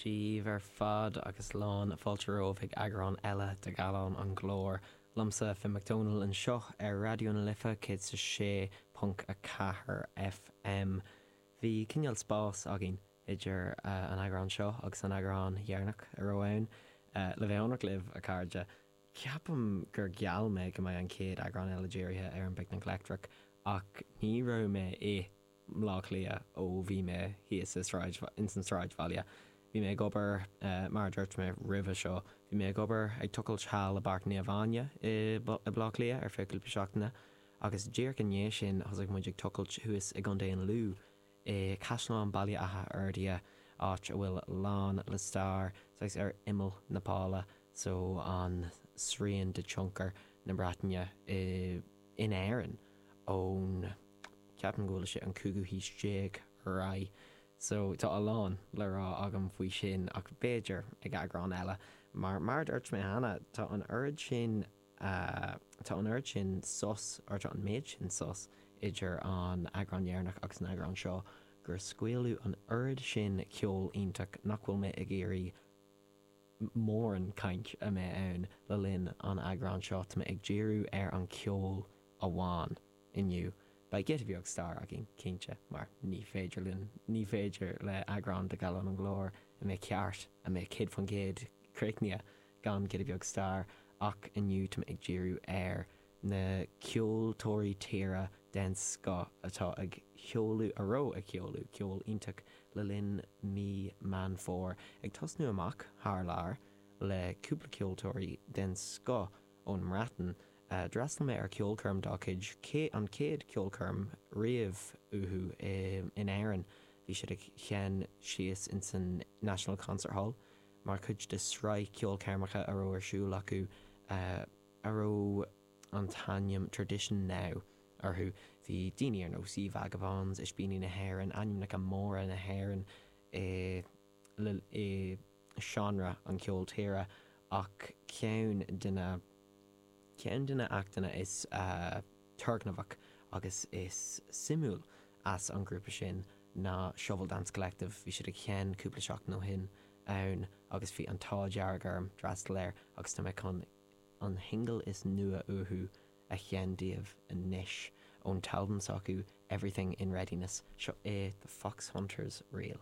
daoibh ar fad agus lán fáilte romhaibh ag eagrán eile de Gallán an Ghlóir. Liomsa, Finn McDonald anseo ar Raidió na Life 106.4 FM. Bhí cineál spáis againn idir an eagrán seo agus an eagrán dheireanach a raibh ann. Le bheith ionraic libh, a chairde, ceapaim gur gheall mé go mbeidh an chéad eagrán eile dírithe ar an bPicnic Leictreach, ach ní raibh mé i. mBleá Cliath ó bhí mé thíos ins an tsráidbhaile. Bhí mé ag obair, mar a dúirt mé roimhe seo, bhí mé ag obair ag tochailt thall i bPáirc Naomh Áine i mBleá Cliath ar feadh cúpla seachtaine agus díreach i ndiaidh sin thosaigh muid ag tochailt thuas i gContae an Lú i gCaisleán Bhaile Átha Fhirdhia, áit a bhfuil lán le stair, saghas ar imeall na Pála so an srian de tionchar na Breataine in Éirinn ón. Ceapaim go bhfuil sé an cúigiú haois déag ar aghaidh, so tá a lán le rá agam faoi sin, ach b'fhéidir ag eagrán eile. Mar, mar a dúirt mé cheana, tá an oiread sin, tá an oiread sin sos, or tá an méid sin sos idir an eagrán dheireanach agus an eagrán seo gur scaoileadh an oiread sin ceol iontach nach bhfuil mé ag iarraidh mórán caint a mbeidh ann le linn an eagrán seo, tá mé ag díriú ar an ceol amháin. Inniu, beidh giota beag stair againn, cinnte, mar ní féidir linn, ní féidir le eagrán de Gallán an Ghlóir a mbeidh ceart, a mbeidh céad faoin gcéad críochnaithe, gan giota beag stair, ach inniu tá mé ag díriú ar na ceoltóirí tíre den scoth atá ag sheoladh, a raibh ag sheoladh, ceol iontach le linn mí Meán Fómhair, ag tosnú amach thar lear le cúpla ceoltóirí den scoth, ón mBreatain, d'fhreastal mé ar ceolchoirm dá cuid, an chéad cheolchoirm riamh uathu in Éirinn. Bhí siad ag sheinn síos ins an National Concert Hall mar chuid de sraith ceolchoirmeacha a raibh ar siúl acu a raibh an t-ainm Tradition Now orthu. Bhí daoine ar nós Ye Vagabonds, Ispíní na hÉireann, ainmneacha móra na hÉireann i. i seánra an cheoil tíre ach ceann de na ceann de na hachtanna is turgnamhach agus is suimiúil as an grúpa sin ná Shovel Dance Collective. Bhí siad ag sheinn cúpla seachtain ó shin ann agus bhí an t-ádh dearg orm d'fhreastal air agus tá mé chun an shingil is nua uathu a sheinn daoibh anois ón t-albam s'acu Everything In Readiness, seo é The Foxhunters Reel.